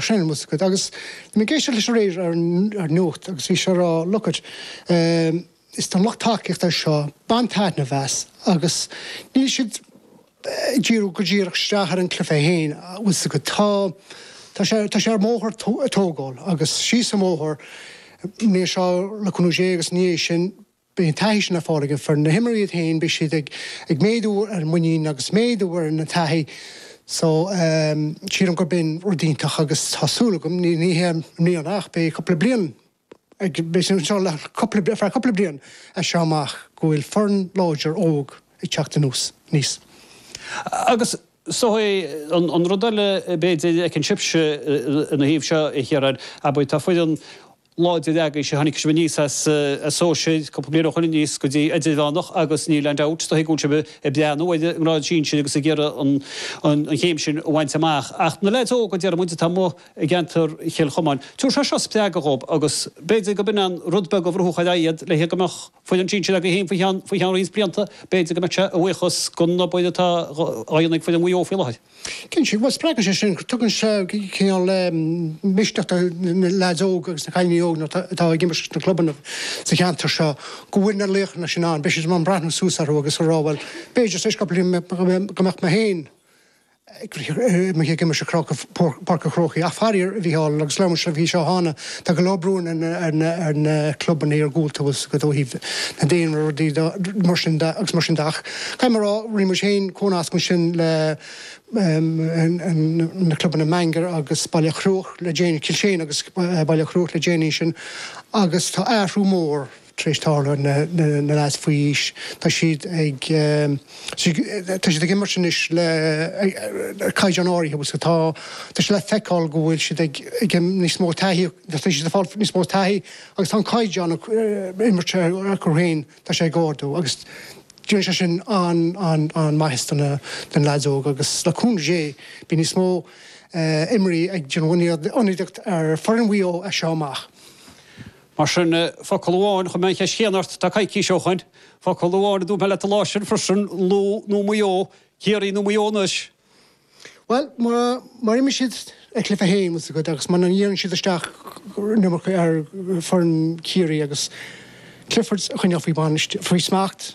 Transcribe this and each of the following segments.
Sin an bhfios agat. Agus bhí mé ag éisteacht leis aréir ar an nuacht agus bhí sé ag rá look it is don lucht tacaíochta é seo, bain taitneamh as agus níl siad ag díriú go díreach isteach ar an gcluife é féin, an bhfios agat. Tá, tá sé, tá sé ar an mbóthar ag tógáil agus síos an bóthar, beidh sé le cúnamh Dé agus ina dhiaidh sin, Beidh an taithí sin le fáil ag foireann, na himreoirí iad féin, beidh siad ag méadú ar an muinín agus méadú ar an taithí so sílim gurb in rud iontach agus tá súil agam, ní hé i mbliana ach beidh cúpla bliain ag, beidh siad anseo le cúpla, ar feadh cúpla bliain as seo amach, go bhfuil foireann láidir óg ag teacht anuas, aníos. Agus sé an rud eile b'fhéidir a fheiceann sibhse ina thaobh seo, a Chiaráin, abair tá foireann láidir agaibh sé, tháinig sibh aníos as sóisear cúpla bliain ó shoin aníos go dtí idirmheánach agus níl ain dabht, dóigh go bhfuil sibh ag breathnú ar an ngrád sinsir agus ag iarraidh an chéim sin a bhaint amach. Ach na leaids óga, déarfadh muid, atá amuigh i gceantar Chill Chomáin, tabharfaidh sé seo spreagadh dhóibh agus b'fhéidir go b'in an rud beag a bhrúfadh ar aghaidh iad le go mbeadh. Foireann sinsir againn fhéin faoi cheann roinnt blianta, b'fhéidir go mbeadh sé a bhuíochas den obair atá á dhéanamh ag foireann Mhaigh Eo faoi láthair. Cinnte, má spreagann sé sin, tugann sé cineál misneach do na leaids óga agus na cailíní óga atá ag imirt leis na clubanna sa cheantar seo go bhfuil na laochanna sin ann, beidh siad in ann breathnú suas orthu agus a rá bhuel, b'fhéidir tar éis cupla bliain go mbeadh mé féin amuigh ag imirt sa chróca Páirc an Chrócaigh ach faraor, a Mhichíl, agus labhair sibh faoi seo cheana, tá go leor brú ar na clubanna ar gcúl thuas ó thaobh na daonra, rudaí mar sin de agus mar sin de ach caithfidh mé a rá, rinne muid féin cónasc ansin le na clubanna Baingear agus Baile Chruaich le déanaí, Kilshane agus Baile Chruaich le déanaí ansin agus tá athrú mór. tar éis tarlú, na lads faoi aois, tá siad ag, tá siad ag imirt anois le caighdeán níos airde, bhuel, so tá, tá sé le feiceáil go bhfuil siad ag, ag níos mó taithí, tá siad ag fáil níos mó taithí agus tá an caighdeán imeartha acu féin, tá sé ag ardú agus déanann sé sin an, an, an maitheas do na, do na lads óga agus le cúnamh Dé beidh níos mó imreoirí ag déanamh ionadaíocht ar foireann Mhaigh Eo as seo amach. Mar sin, focal amháin chuir mé an cheist chéanna ort, tá coicís ó shoin, focal amháin a dúirt mé leat an lá sin freisin, Lú nó Maigh Eo, Ciarraí nó Maigh Eo anois? Bhuel, má imríonn siad a gcluife féin, fhios agat, agus muna ndíreann siad isteach in iomarca ar foireann Chiarraí agus Clifford a choinneáil faoi bhainistiú, faoi smacht,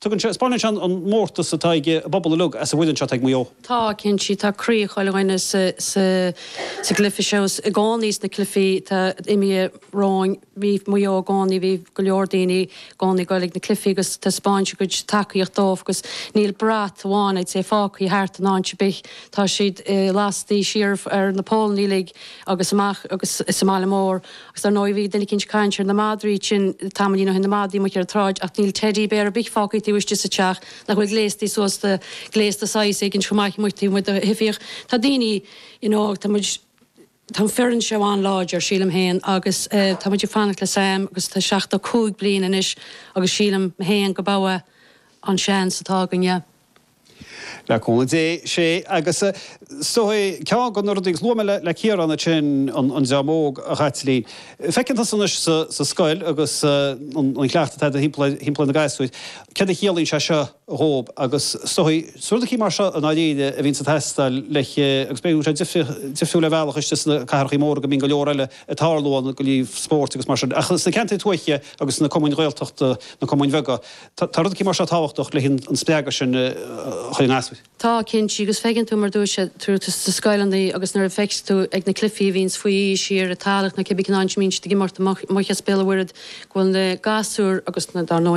Tugann seo, spáineann seo an mórtas atá ag an bpobal uilig as an bhfoireann seo atá ag Maigh Eo. Tá, cinnte, sí, tá croí chuile dhuine sa gcluife seo i gcónaí, sna cluifí atá imithe romhainn. Bhí Maigh Eo i gcónaí, bhí go leor daoine i gcónaí ag goil ag na cluifí agus taispeáint a gcuid tacaíocht dóibh agus níl brat amháin, I'd say, fágtha thart in áit ar bith. Tá siad lastaí siar ar na pólannaí uilig agus amach agus sa mbaile mór. Agus dar ndóigh bhí duine eicínt ag caint ar na madraí sin tamaillín ó shin, na madraí amuigh ar an tsráid, ach níl teidí béar ar bith fágtha taobh istigh sa teach nach bhfuil gléastaí suas, gléasta saghas éigint chomh maith amuigh taobh amuigh de thifíocht. Tá daoine, you know, tá muid, tá an foireann seo an-láidir, sílim féin, agus eh tá muid ag fanacht le Sam agus tá seachtó cúig bliain anois agus sílim féin go badh é an seans atá againne. Le cúnamh Dé, sé agus a, so é ceann de na rudaí a luaigh mé le, le Ciarán ansin, an, an dream óg, a Chaitlín. Feiceann tusa anois sa, sa scoil agus an, an cleachtadh atá agat thimpeall, thimpeall na gasúir, céard a chiallaíonn sé seo dhób agus so í, so rud eicínt mar seo i ndáiríre a bhíonns ag teastáil le, agus b'fhéidir go bhfuil sé difrioch, difriúil ar bhealach istigh sna cathrachaí móra go mbíonn go leor eile ag tarlú ann, go, ní, spóirt agus mar sin ach sna ceantair tuaithe agus sna cumainn Ghaeltachta, na cumainn bheaga. Tá rud eicínt mar seo tábhachtach le haghaidh an spreagadh sin chuig an easpa. Tá, cinnte, agus feiceann tú, mar a dúirt sé, tú sna scoileanna agus nuair a feiceas tú ag na cluifí a bhíonns faoi aois siar i Talach nó cibé cén áit a mbíonn siad ag imirt amach as Béal an Mhuirthead go bhfuil na gasúir agus, dar ndóigh, na.